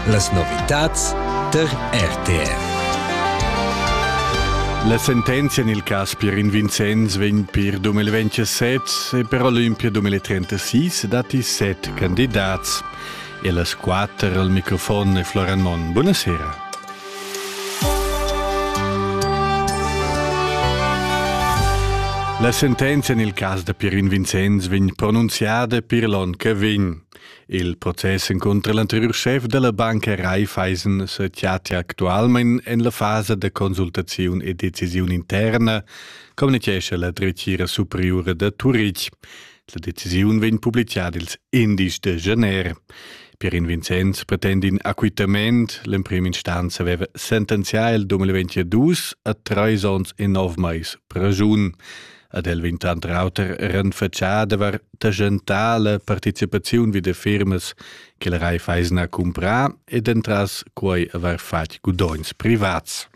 Las novitads tar RTF. La sentenzia en il cas Pierin Vincenz vegn per 2027 e per Olympia 2036 dati set candidats. E las quatter al microfon è Florian Mon. Buonasera. La sentenzia en il cas da Pierin Vincenz vegn pronunziada per l'onn che vegn. Il process encunter l'anteriur schef dalla banca Raiffeisen sechatia actualmein en la fasa da consultaziun e decisiun interna, communichescha la dretgira superiura da Turitg. La decisiun vegn publicada ils indies de Janeiro. Pierin Vincenz pretend in acquitament. L'emprim instanza aveva sentenzià il 2022 a treis onns e nov mais pregiun. Ad el vegn tant rauter renfatschà d'avair tagentà la participaziun vi da firmas che la Raiffeisen ha cumprà ed entras quai avair fatg gudogns privats.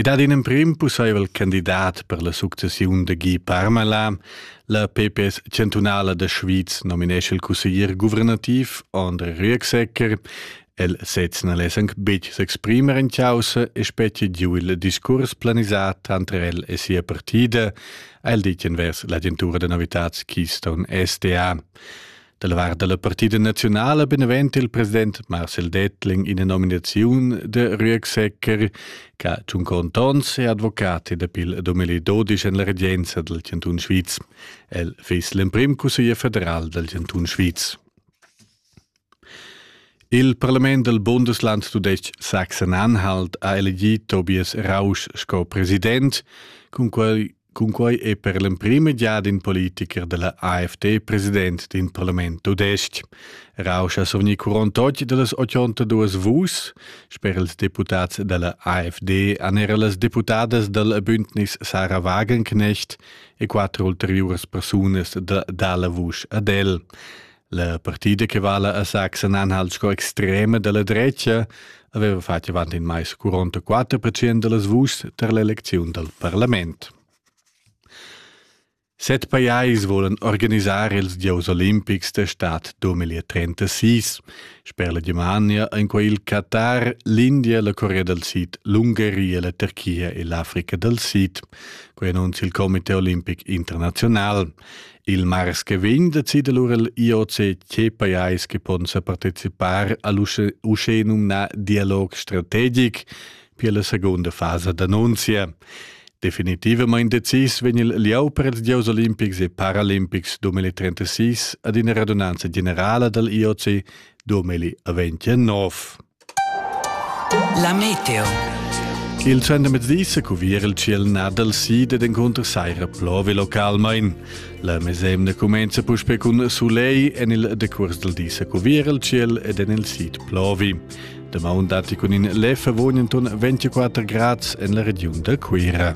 I dat in emprim pussaivel candidat per la successiun da Guy Parmelin. La PPS chantunala da Schwyz nominesce il cusseglier guvernativ André Rüegsegger. El sez na less anc betg s'exprimer en chaussa e spetga giu il discurs planisà tanter el e sia partida, ha el ditg envers l'agentura da novitads Keystone SDA. Da la vart da la partida naziunala benevent il president Marcel Dettling ina nominaziun de Rüegsecker, che Tschunco Tons è advocat e dapi il 2012 en la regenza del Cantun Sviz. El fiss l'emprim cusseglier federal del Cantun Sviz. Il parlament dal Bundesland tudestg Sachsen-Anhalt ha elegì Tobias Rausch sco president. Cun quai, cun quai è per l'emprima giada in politicher da la AfD president d'in parlament tudestg. Rausch ha survgni 48 da las 82 vuschs. Sper ils deputads da la AfD han era las deputadas dal Bündnis Sarah Wagenknecht e quatter ulteriuras persunas da, da la vusch ad el. La partida che vala a Sachsen Anhalt sco extrema dalla drecia aveva fatg avant in mais 44% dallas vuschs tar l'elecziun dal parlament. Set pajais volan organisar ils gieus olimpics da stad 2036. Sper la Germania en quei il Qatar, l'India, la Corea del Sid, l'Ungaria, la Turchia e l'Africa del Sid. Quei annunzia il Comité olimpic internazional. Il mars che vegn decida lura l'IOCC pajais che pon sa participar all'uschè numnà dialog strategic per la seconda fasa d'annunzia. Definitivament decis vegn il lieu per ils gieus olimpics e paralimpics 2036 ad ina radunanza generala dal IOC 2029. La meteo. Il trendemezdi se cuvier il ciel nadal sid ed encunter saira plovi localmain. La mesemna cumenza puspe cun sulei en il decuors del di se cuvier il ciel ed en il sid plovi. Damaun dati cun in lef avogn enton 24 grads en la regiun da Cuira.